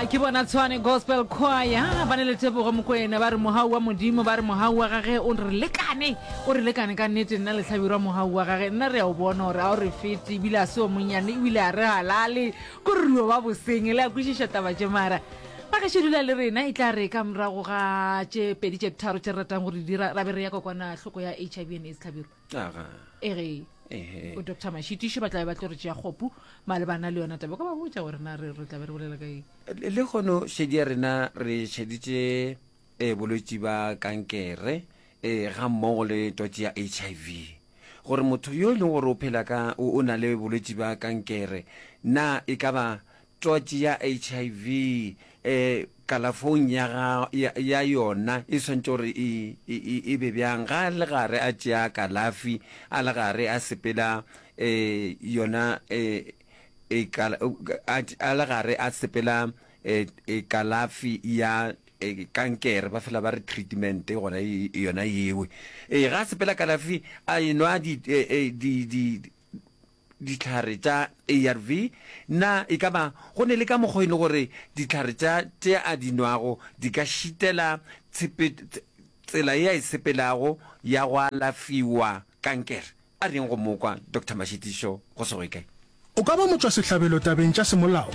a ke bona tshwane gospel choir ba ne le tebogo mokwena ba re mogau wa modimo ba re mogau wa gage o re lekane o re lekane ka nnete nna letlhabirwa mogau wa gage nna re a o bona gore a o re fete ebile a se o monnyane ebile a re halale ko ruo wa boseng le a kwešiša taba tše mara ba ka šedula le rena e tla re ka morago ga tše pedi tše tharo tše re ratang gore dira ra be re ya kokwana hloko ya h i v and aids tlhabiro aga e re ehe o doctor mashitiše ba tlabe ba tlo re tšea kgopu malebana le yona taba ka ba botša gore na re re tlabe re bolela ka eng le le kgono šedi ya rena re šeditše eh, bolwetši ba kankere eh, ga mmogo le twatši ya hiv gore motho yo e leng gore o phela ka o o na le bolwetši ba kankere na e ka ba Twatši ya HIV e, kalafong ya, ga, ya, ya yona e swanetše gore e, e, e, e be bjang? Ga a le gare a tšea kalafi, a le gare a sepela e, yona e, e, kala, a, a le gare a sepela e, e, kalafi ya e, kankere, ba fela ba re treatment gona e, yona yeo. E, ga a sepela kalafi, a enwa di, e, e, di, di, dihlare tša ARV, na e ka ba go ne le ka mokgwa e le gore dihlare tša tše a di nwago di ka šitela tshepe, tsela e a e sepelago ya go alafiwa kankere? A reng go mo kwa Doctor Mashitišo go Sogekae? O ka ba motšwasehlabelo tabeng tša semolao